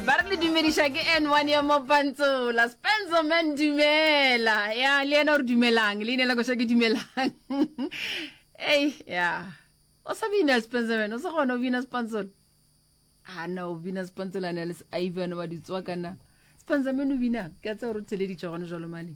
ba re le dumediša ke n one ya mopantsola spencer man dumela ya le yena o re dumelang leina la koša ke dumelang ei ya o sa bina spencer man o sa kgona o bina spantsola a na o bina spantsola ne le ivan wa ditswa kana spencer man o binang ke a tse gore o theleditšwa gone jalo mane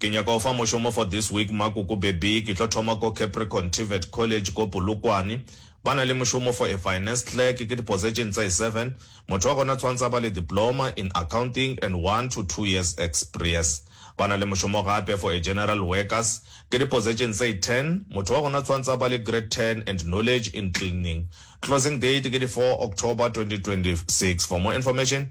Ke nyaka go fa mošomo for this week ma koko baby, ke tlo thoma ko Capricorn Tvet College ko Polokwane. Ba na le mošomo for a finance clerk, ke diposetšene tsa seven. Motho wa gona tshwantse a ba le diploma in accounting and one to two years expriece. Ba na le mošomo gape for a general workers, ke diposetšene tsa ten. Motho wa gona tshwantse a ba le grade ten and knowledge in cleaning. Closing date ke di four October twenty twenty six. For more information.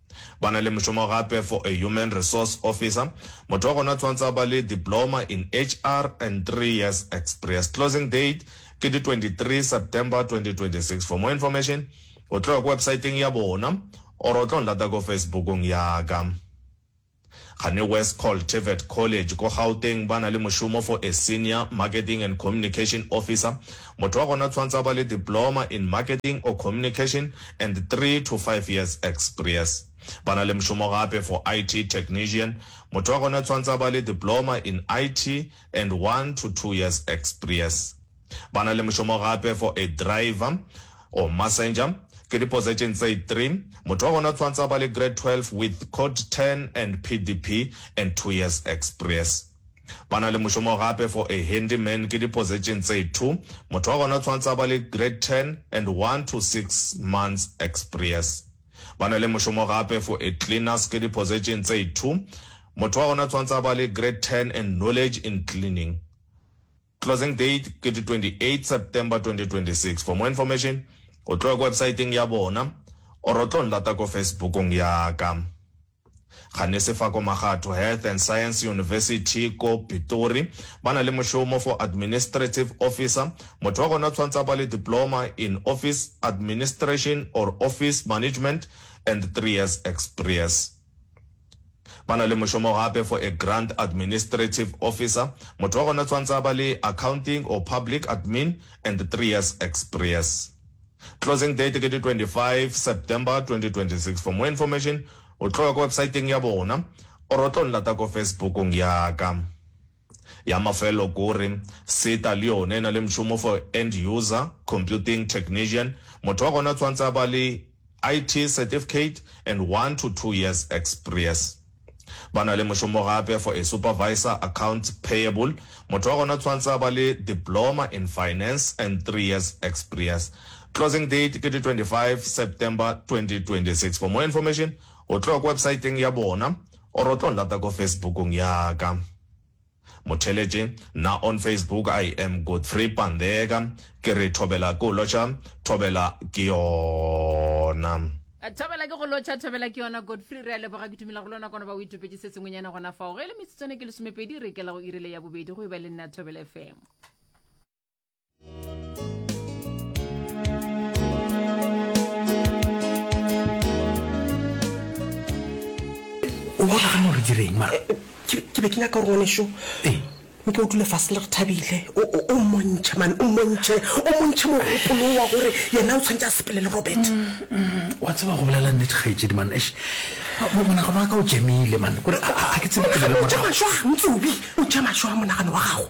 Ba na le mošomo gape for a human resource officer, motho wa gona tshwantsa ba le diploma in HR and three years experience. Closing date ke di 23 September 2026. For more information o tlo ya ko websiteng ya bona or o tlo nlata ko Facebook-ong ya ka. Kgane West Col Tvet College ko Gauteng ba na le mošomo for a Senior Marketing and Communication Officer. Motho wa gona tshwantse a ba le Diploma in Marketing or Communication and three to five years expries. Ba na le mošomo gape for IT Technician. Motho wa gona tshwantse a ba le Diploma in IT and one to two years expries. Ba na le mošomo gape for a driver or massenger. Ke di possession tse three. Motho wa gona o tshwantse a ba le grade twelve with code ten and PDP and two years experience. Ba na le mošomo gape for a handy man. Ke di possession tse two. Motho wa gona o tshwantse a ba le grade ten and one to six months experience. Ba na le mošomo gape for a cleaners. Ke di possession tse two. Motho wa gona o tshwantse a ba le grade ten and knowledge in cleaning. Closing date ke di 28 September 2026 for more information o tlo ya ko websaeteng ya bona or o tlo nlata ko Facebookong ya ka. Ga ne se fa ko Magatho Health and Science University ko Pitori ba na le mošomo for Administrative Officer, motho wa gona o tshwantse a ba le Diploma in Office Administration or Office Management and three years experience. Ba na le mošomo gape for a grant administrative officer, motho wa gona tswantsa a ba le accounting or public admin and three years exprience. Closing date ke di 25 September 2026. For more information o tlo ya ko websiteng ya bona or o tlo nlata ko Facebook-ong ya ka. Ya mafelelo ke gore, SETA le yona e na le mšomo for end user, computing technician, motho wa gona tshwantse a ba le IT certificate and one to two years experiece. Ba na le mošomo gape for a supervisor, account payable, motho wa gona tshwantse a ba le diploma in finance and three years experiece. Closing date ke di 25 September 2026. For more information, o tlo ya ko websaeteng ya bona. Or o tlo nlata ko Facebook-ong ya ka. Motheletše, Nna on Facebook I am Godfrey Pandeka. Ke re thobela ke go lotšha, thobela ke yona. Thobela ke go lotšha, thobela ke yona. Godfrey, re a leboga, ke dumela go lona kono ba o itopetše se sengwenyana gona fao. Ge e le metsotswane ke lesomepedi, re ikela go irile ya bobedi go e ba le nna Thobela FM. o bona gana gore direng ma eh, eh, ke be ke nyaka gore ngwaneso ee eh. nke o dule fase le re thabile o mmontšhe mane o mmontšhe o mmontšhe mogopolo wa gore yena o tshwanetse a sepele le robert mm, mm. wa tseba go bolela nnete gaetsedi mane es monagano wa ka o jamile mane kore a ke tsebetsebeletšamašwa ntse obi o jamaswa monagano wa gago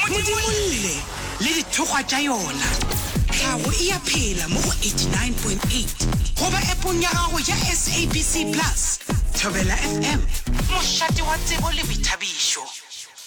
modimolle le dithokgwa tša yona tlhago e ya phela mo go 89.8 goba epong ya gago ya sabc plus thobela fm mošate wa tsebo le boithabišo